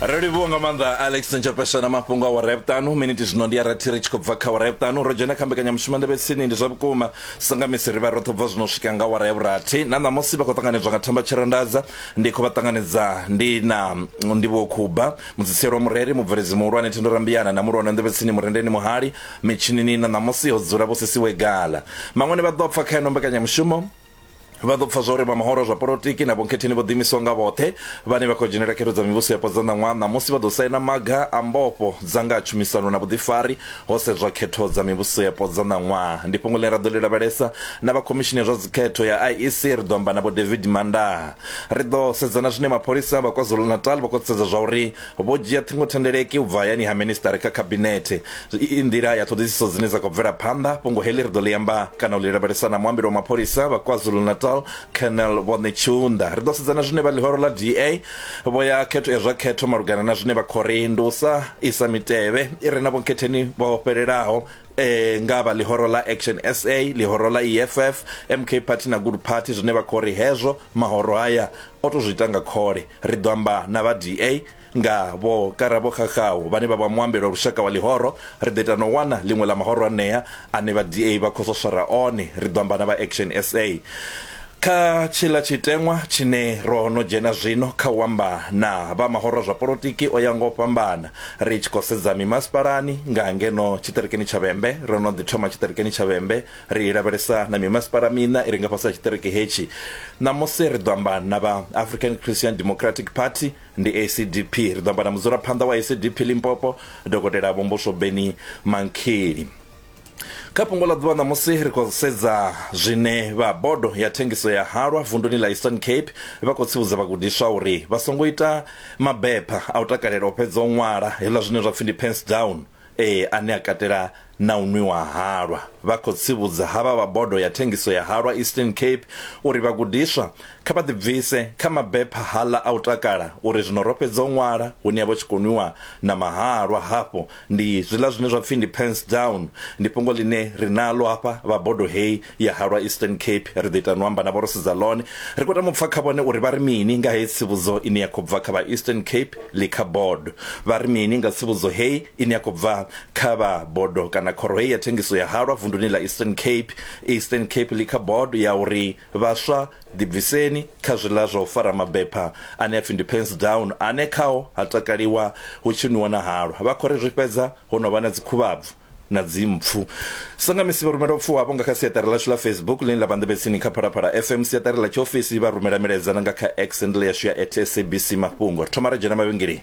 ro livhuwa nga maanḓa alex ntshapesha na mafhungo a wara ya vhuṱanu miniti zwino ndi ya rathi ri tshi khou bva kha wara ya vhuṱanu ro dzhena kha mbekanyamushumo ndebe tsini ndi zwa vhukuma sangamisi ri vha ro thobva zwino swika nga wara ya vhurathi na ṋamusi vha khou ṱanganedzwa nga thamba tshirandadza ndi khou vha ṱanganedza ndi na ndivhuwo khuba mudzitsielo wa mureri mubveledzi muhulwane thendo rambiyana na mulwana ndebe tsini murendeni muhali mitshinini na ṋamusi ho dzula vho sisiwe gala maṅwene vha ḓo pfa kha yeno mbekanyamushumo Vha ḓo pfa zwa uri vha mahoro zwa polotiki na vhonkhetheni vho ḓiimisaho nga vhoṱhe vhane vha khou dzhenela khetho dza mivhuso yapo dza ṋaṅwaha ṋamusi vha ḓo saina maga a mbofho dza nga ha tshumisano na vhuḓifari ho sedzwa khetho dza mivhuso yapo dza ṋaṅwaha. Ndi fhungo ḽine ra ḓo ḽi lavhelesa na vha Khomishini ya zwa Dzikhetho ya IEC, ri ḓo amba na Vho David Mandaha. Ri ḓo sedza na zwine mapholisa vha KwaZulu-Natal vha khou sedza zwa uri Vho dzhia ṱhingothendeleki u bva hayani ha Minisiṱari kha Khabinethe. I i nḓila ya ṱhoḓisiso dzine dza khou bvela phanḓa. Fhungo heḽi ri ḓo ḽi amba kana u ḽi lavhelesa na muambeli wa mapholisa vha KwaZulu-Natal, Colonel Vho Netshiunda. Ri ḓo sedza na zwine vha ḽihoro ḽa DA vho ya khetho ya zwa khetho malugana na zwine vha khou ri ndi u sa isa mitevhe i re na vhunkhetheni vho fhelelaho eh ngavha ḽihoro ḽa Action SA ḽihoro ḽa EFF MK Party na Good Party zwine vha khori hezwo mahoro haya o to zwi ita nga khole ri ḓo amba na vha DA nga vho Karabo Khakhaho vhane vha vha muambeli wa lushaka wa ḽihoro ri ḓo ita no wana ḽiṅwe ḽa mahoro anea ane vha DA vha khou swaswara one ri ḓo amba na vha Action SA Kha tshiḽa tshiteṅwa tshine ro no dzhena zwino kha u amba na vha mahoro zwa polotiki o ya ngo fhambana, ri tshi khou sedza mimasipalani nga ngeno tshiṱirikini tsha Vhembe, ro no ḓi thoma tshiṱirikini tsha Vhembe, ri lavhelesa na mimasipala miṋa i re nga fhasi ha tshiṱiriki hetshi. Ṋamusi ri ḓo amba na vha African Christian Democratic Party, ndi ACDP. Ri ḓo amba na mudzulaphanḓa wa ACDP Limpopo, Dokotela Vho Mbuso Benny Mankhili. Kha fhungo ḽa ḓuvha ṋamusi ri khou sedza zwine vha bodo ya thengiso ya halwa vunduni ḽa Eastern Cape vha khou tsivhudza vhagudiswa uri vha songo ita mabepha a u takalela u fhedza u ṅwala hezwiḽa zwine zwa pfi ndi pens down e ane a katela na u nwiwa halwa. Vha khou tsivhudza havha vha bodo ya thengiso ya halwa Eastern Cape uri vhagudiswa kha vha ḓibvise kha mabepha haḽa a u takala uri zwino ro fhedza u ṅwala hune ha vha tshi khou nwiwa na mahalwa hafhu Ndi zwiḽa zwine zwa pfi ndi pens down ndi fhungo ḽine ri naḽo hafha vha bodo heyi ya halwa Eastern Cape ri ḓo ita no amba na vho ro sedza ḽone ri khou tama u pfha kha vhone uri vha ri mini nga heyi tsivhudzo ine ya khou bva kha vha Eastern Cape ḽi kha bodo vha ri mini nga tsivhudzo heyi ine ya khou bva kha vha bodo kana khoro heyi ya thengiso ya halwa vunduni ḽa Eastern Cape Eastern Cape ḽi kha bodo ya uri Vhaswa, ḓibviseni kha zwiḽa zwa u fara mabepha ane a pfi ndi pens down ane khao ha takaliwa hu tshi nwiwa na halwa. Vha khou ri zwi fhedza ho no vha na dzikhuvhabvu na dzimpfu. Sa nga misi vha rumela u pfuwa havho nga kha siaṱari ḽashu ḽa Facebook ḽine ḽa vha nḓevhetsini kha Phalaphala FM, siaṱari ḽa tshiofisi, vha rumela milaedza na nga kha X handle yashu ya at SABC Mafhungo. Ri thoma ra dzhena mavhengeleni.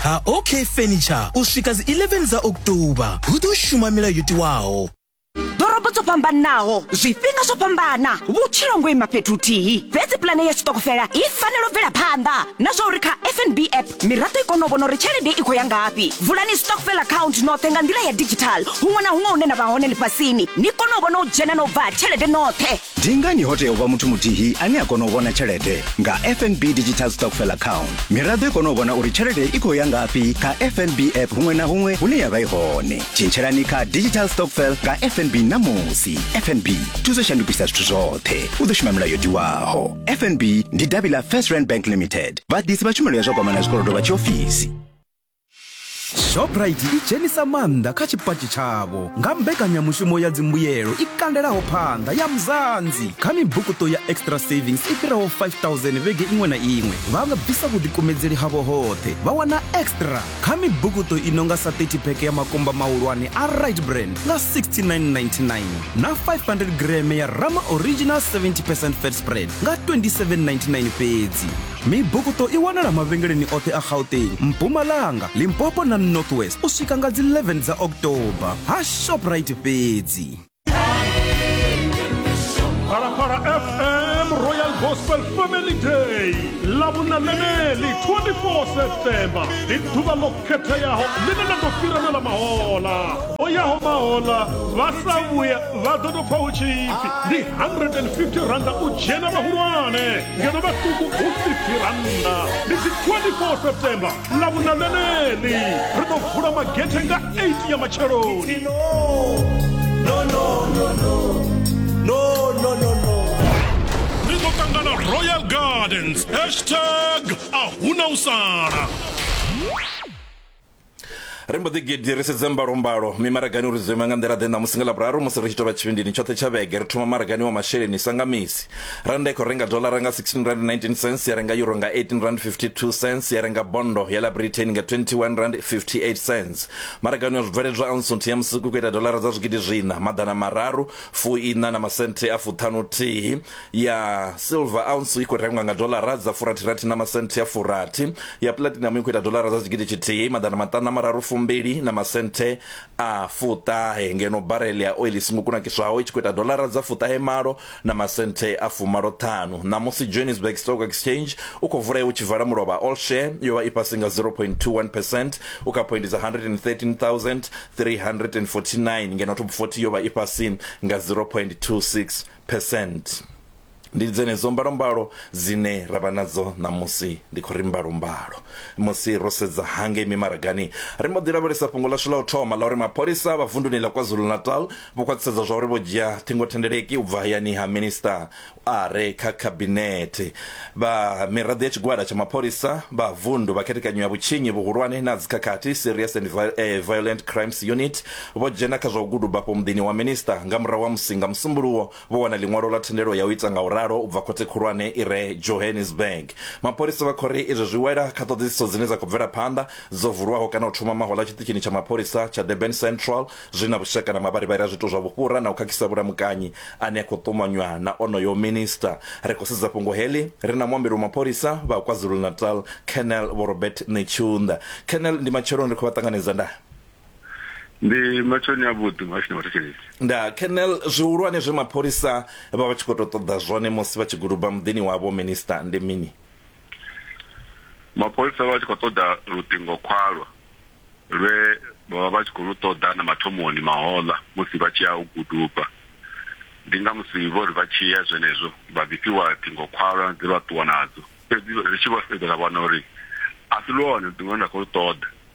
ha OK Furniture u swika dzi 11 dza October hu ḓo shuma milayo yo tiwaho ḓorobo dzo fhambanaho zwifhinga zwo fhambana vhutshilo ngo ima fhethu huthihi fhedzi pulane ya tshiṱokofela i fanela u bvela phanḓa na zwa uri kha fnb app miraḓo i kone u vhona uri tshelede i khou ya ngafhi vulani stockfel account noṱhe nga nḓila ya digital huṅwe na huṅwe hune na vha hone ḽifhasini ni kone u vhona u dzhena na u bva ha tshelede noṱhe Ndi ngani ho tea u vha muthu muthihi ane a kona u vhona tshelede nga FNB Digital Stockfell Account? Miraḓo i kona u vhona uri tshelede i khou ya ngafhi kha FNB app huṅwe na huṅwe hune ya vha i hone. Tshintshelani kha Digital Stockfell nga FNB ṋamusi. FNB thuso shandukisa zwithu zwoṱhe. U ḓo shuma milayo tiwaho. FNB ndi davhi ḽa First Rand Bank Limited. Vhaḓisi vha tshumelo ya zwa gwama na zwikolodo vha tshiofisi. shoprite i dzhenisa maanḓa kha tshipatshi tshavho nga mbekanyamushumo ya dzimbuyelo i kandelaho phanḓa ya mzanzi kha mibukuṱo ya extra savings i fhiraho 5000 vhege iṅwe na iṅwe vha nga bvisa vhuḓikumedzeli havho hoṱhe vha wana extra kha mibukuṱo i no nga sa 30 pheke ya makumba mahulwane a right brand nga 6999 na 500 greme ya rama original 70 percent fat spread nga 2799 fhedzi Mibukuṱo i wanala mavhengeleni oṱhe a Gauteng, Mpumalanga, Limpopo na North West u swika nga dzi 11 dza October ha Shoprite fhedzi. Phalaphala FM Royal Gospel Family Day ḽa vhuṋa ḽeneḽi 24 September ndi ḓuvha ḽo khetheaho ḽine ḽa ḓo fhirana ḽa mahola o yaho mahola vha sa vhuya vha ḓo tou pfa hu tshipfi ndi 150 randa u dzhena vhahulwane ngeno vhaṱuku hu si phirannda ndi dzi 24 september ḽa vhuna ḽeneḽi ri ḓo vula magethe nga 8 ya matsheloni ri ḓo ṱangana royal gardens hashtag a huna u sala ri mbo ḓi gidi ri sedze mbalombalo mimaragani uri zwo ima nga nḓila ḓe ṋamusi nga ḽavhuraru musi ri tshi tovha tshivhindini tshoṱhe tsha vhege ri thoma maragani wa masheleni sa nga misi randa i khou renga dolara nga 16 rand 19 cents ya renga euro nga 18 rand 52 cents ya renga bondo ya ḽa britain nga 21 rand 58 cents maragani wa zwibveledzwa ansunthu ya musiku ku ita dolara dza zwigidi zwina maḓana mararu fuiṋa na masenthe a fuṱhanu thihi ya silver ounce i khou rengwa nga dolara dza furathirathi na masenthe a furathi ya platinum i khou ita dolara dza tshigidi tshithihi maḓana maṱanu na mararu fumbili na masenthe a fuṱahe ngeno barel ya oil singo kunakiswaho i tshi khou ita dolara dza fuṱahe malo na masenthe a fumalo ṱhanu ṋamusi johannesburg stock exchange u khou vulea u tshi vala mulovha all share yo vha i fhasi nga 0.21 percent u kha poindi dza 113349 ngeno top 40 yo vha i fhasi nga 0.26 percent. Ndi dzenedzo mbalombalo dzine ra vha nadzo ṋamusi. Ndi khou ri mbalombalo musi ro sedza hangei mimaragani, ri mbo ḓi lavhelesa fhungo ḽashu ḽa u thoma ḽa uri mapholisa vha vunduni ḽa KwaZulu-Natal vho khwaṱhisedza zwa uri vho dzhia ṱhingothendeleki u bva hayani ha minisiṱa a re kha khabinethe. Vha miraḓo ya tshigwada tsha mapholisa vha vundu vha khethekanyo ya vhutshinyi vhuhulwane na dzikhakhathi, Serious and Violent Crimes Unit, Vho dzhena kha zwa u guduba afho muḓini wa Minista nga murahu ha musi nga Musumbuluwo vho wana ḽiṅwalo ḽa thendelo ya u ita nga u ralo u bva Khothe Khulwane i re Johannesburg. Mapholisa vha khou ri izwi zwi wela kha ṱhoḓisiso dzine dza khou bvela phanḓa dzo vulwaho kana u thoma mahoḽa tshiṱitshini tsha mapholisa tsha Durban Central zwi na vhushaka na mavharivhari a zwiito zwa vhufhura na u khakhisa vhulamukanyi ane a khou ṱumanywa na onoyo Minista. Ri khou sedza fhungo heḽi ri na muambeli wa mapholisa vha KwaZulu-Natal, Colonel Vho Robert Netshiunda. Colonel, ndi matsheloni ri khou vha ṱanganedza nda. ndi matshoni a vhuḓi muhashini wa thetshelesi nda kenel zwihulwane zwe mapholisa vha vha tshi khou tou ṱoḓa zwone musi vha tshi guluba muḓini wavho minista ndi mini mapholisa vha tshi khou ṱoḓa luṱingo khwalwa lwe vhavha vha tshi khou lu ṱoḓa na mathomoni mahoḽa musi vha tshi ya u guduba ndi nga musi vho ri vha tshi ya zwenezwo vha ḓifhiwa ṱingo khwalwa dze vha ṱuwa nadzo fhedzi ri tshi vho sedza ra vhona uri a si lwone luṱingo lune nda khou lu ṱoḓa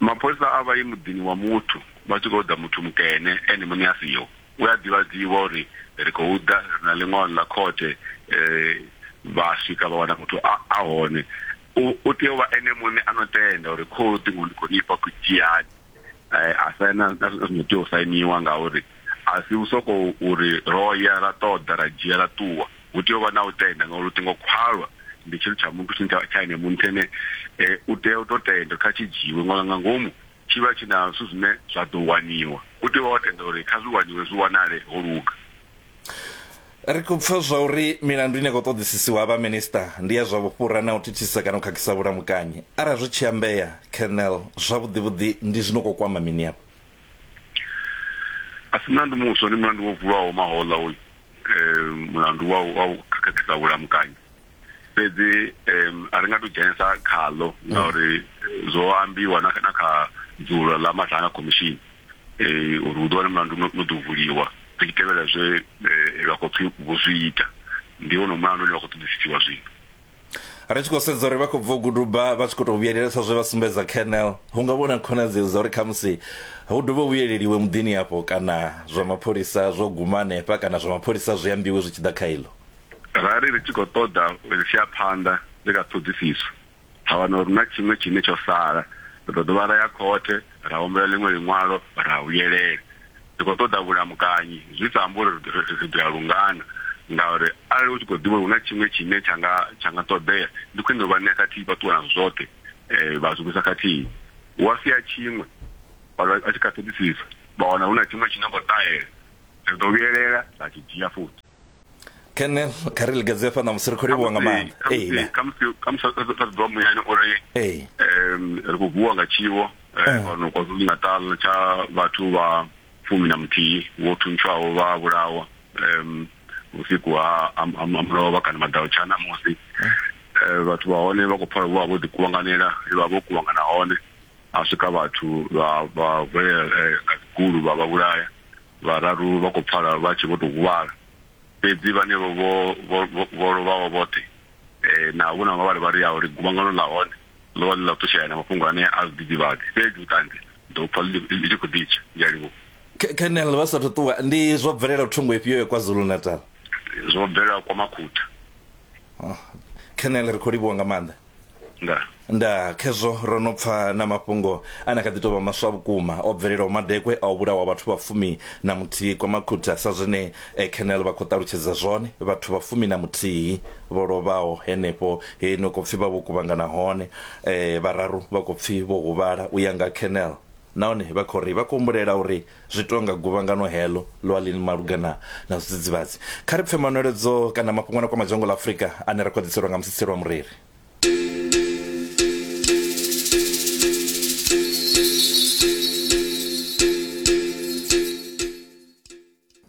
Mapholisa a vha ye muḓini wa muthu vha tshi khou ḓa muthu mukene ene muṋe a siho. We a ḓivhadziwa uri ri khou ḓa ri na ḽiṅwalo ḽa khothe vha swika vha wana muthu a a hone, u u tea u vha ene muṋe a no tenda uri khohu ṱhingo ndi khou ni fha ku dzhiani a saina na zwi no tea u sainiwa ngauri a si u sokou uri ro ya ra ṱoḓa ra dzhia ra ṱuwa. Hu tea u vha na u tenda ngauri luṱingo khwalwa ndi tshithu tsha muthu tshine tsha ene muthu ene u tea u to tenda kha tshi dzhiiwe nga nga ngomu tshi vha tshi na zwithu zwine zwa ḓo waniwa u tea u vha o tenda uri kha zwi waniwe zwi wanale ho luga. Ri khou pfa zwa uri milandu ine ya khou ṱoḓisisiwa ha vha minista ndi ya zwa vhufhura na u thithisa kana u khakhisa vhulamukanyi. Arali zwi tshi ambea, Colonel, zwavhuḓivhuḓi ndi zwino khou kwama mini afho? a si mulandu muswa ndi mulandu wo vuwaho mahoḽa hoyu um mulandu wa wa u khakhisa vhulamukanyi fhedzi um a ri nga to dzhenesa khaḽo ngauri zwo ambiwa na na kha dzulo ḽa mathanga khomishini eh uri hu ḓo wana mulandu no ḓo vuliwa ri tshi tevhela zwe vha khou pfhi vho zwi ita ndi wone mulandu une wa khou ṱoḓisisiwa zwino ri tshi khou sedza uri vha khou bva u guduba vha tshi khou tou vhuyelela sa zwe vha sumbedza kernel hu nga vhona khonadzeo dza uri khamusi hu dovhe u vhuyeleliwe muḓini afho kana zwa mapholisa zwo guma hanefha kana zwa mapholisa zwi ambiwe zwi tshi ḓa kha iḽo ra ri ri tshi khou ṱoḓa ri tshi ya phanḓa ndi kha ṱhoḓisiso ra wana uri na tshiṅwe tshine tsho sala ri ḓo dovha ra ya khothe ra humbela ḽiṅwe ḽiṅwalo ra vhuyelela ri khou ṱoḓa vhulamukanyi zwi sa ambi uri ri ḓo ya lungana ngauri arali u tshi khou ḓivha uri hu na tshiṅwe tshine tsha nga tsha nga ṱoḓea ndi khwine u vha ṋea khathihi vha ṱuwa nazwo zwoṱhe um vha zwivhusa khathihi wa sia tshiṅwe a tshi kha ṱhoḓisisa vha wana hu na tshiṅwe tshine khou ṱahela ri ḓo vhuyelela ra tshi dzhia futhi kene kha ri ligadze fa na musi ri khou livhuwa nga maanḓa amen khamusi khamusi a ḓo ḓiwa muyani uri um ri khou vuwa nga tshiwo fhano eh, kwazulu natal tsha vhathu vha fumi na muthihi vho thuntshwaho vha vhulawa um vhusiku ha mulovha kana maḓau tsha namusi eh. eh, vhathu vha hone vha khou pfala vho vha vho ḓikuvhanganela vha vho kuvhangana hone ha swika vhathu vha vha vhulela nga dzigulu vha vha vhulaya Vhararu vha khou pfala vha tshe vho tou huvhala, fhedzi vhanevho vho vho lovhaho vhoṱhe na vho na nga vharivhari ya uri guvhangano ḽa hone ḽo vha ḽi ḽa u ṱutshela na mafhungo ane a zwidzidzivhadzi. Fhedzi vhuṱanzi ndi ḓo vhu pfa ḽi tshi khou ḓi tsha. Ndi a livhuwa. Colonel vha sa athu ṱuwa, Ndi zwo bvelelaho thungo ifhio ya KwaZulu-Natal? Zwo bvelela Kwa Makhutha. Colonel ri khou livhuwa nga maanḓa. nda nda khezwo ro no pfa na mafhungo a na kha ḓi tou vha maswa vhukuma o bvelelaho madekwe a u vhulawa vhathu vha fumi na muthihi kwa makhutha sa zwine eh, kenel vha khou ṱalutshedza zwone vhathu vha fumi na muthihi vho lovhaho henefho he no khou pfi vha vho kuvhangana hone eh, vhararu vha khou pfi vho huvhala u ya nga kenel nahone vha khou ri vha khou humbulela uri Zwi tou nga guvhangano heḽo ḽo ḽi malugana na zwidzidzivhadzi. Kha ri pfe manweledzo kana mafhungo a no kwama dzhango ḽa Afrika ane ra khou a ḓiselwa nga Musitsheli wa Mureri.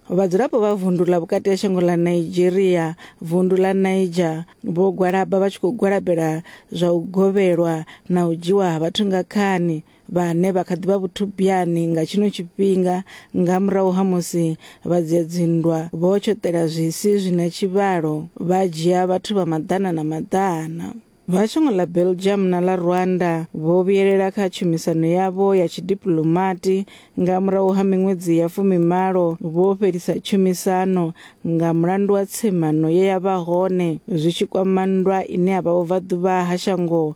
Vhadzulapo vha vundu ḽa vhukati ha shango ḽa Nigeria, vundu ḽa Niger, vho gwalaba vha tshi khou gwalabela zwa u govhelwa na u dzhiwa ha vhathu nga khani vhane vha kha ḓi vha vhuthubiyani nga tshino tshifhinga nga murahu ha musi vha dzia dzinndwa vho tshoṱela zwisi zwi na tshivhalo vha dzhia vhathu vha maḓana na maḓana. Vha shango ḽa Belgium na ḽa Rwanda vho vhuyelela kha tshumisano yavho ya tshidipuḽomati nga murahu ha miṅwedzi ya fumimalo vho fhelisa tshumisano nga mulandu wa tsemano ye ya vha hone zwi tshi kwama nndwa ine ya vha vhubvaḓuvha ha shango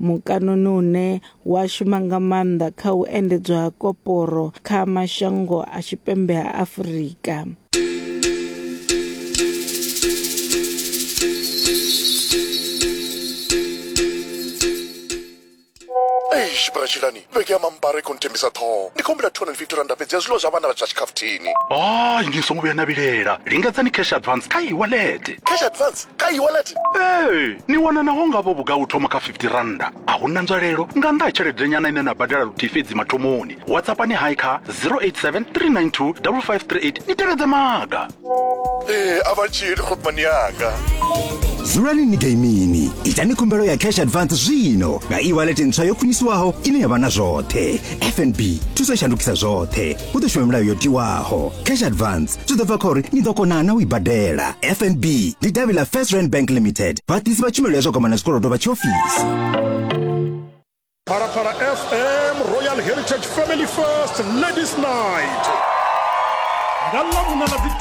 mukanoni une wa shuma nga maanḓa kha u endedzwa ha koporo kha mashango a tshipembe ha Afurika. Eish, bratshilani Vhege ya mambara i khou nthembisa ṱhoho. Ndi khou humbela 250 rannda fhedzi ya zwiḽiwa zwa vhana vha zwa tshikhafuthini. Hai, ni songo vhuya na vhilela. Lingedzani cash advance kha e-wallet. Cash advance kha e-wallet? Ee, ni wana naho nga vho vhugai u thoma kha 50 rannda. A hu na nzwalelo nga nnḓa ha tsheledenyana ine na badela luthihi fhedzi mathomoni. WhatsAppani hai kha 087 392 5538 ni tevhedze maga. ee a vha tshili khopmani yanga dzulani ni gaimini itani khumbelo ya cash advance zwino nga e-wallet ntswa yo khwiniswaho ine ya vha na zwoṱhe fnb thuso i shandukisa zwoṱhe hu ḓo shuma milayo yo tiwaho cash advance zwi ḓo bva kha uri ni ḓo kona na u i badela fnb ndi davhi ḽa first rand bank limited vhaḓisi vha tshumelo ya zwa kwamana zwikolodo vha tshiofisi phalaphala fm royal heritage family first ladies night nga ḽa vhuna ḽa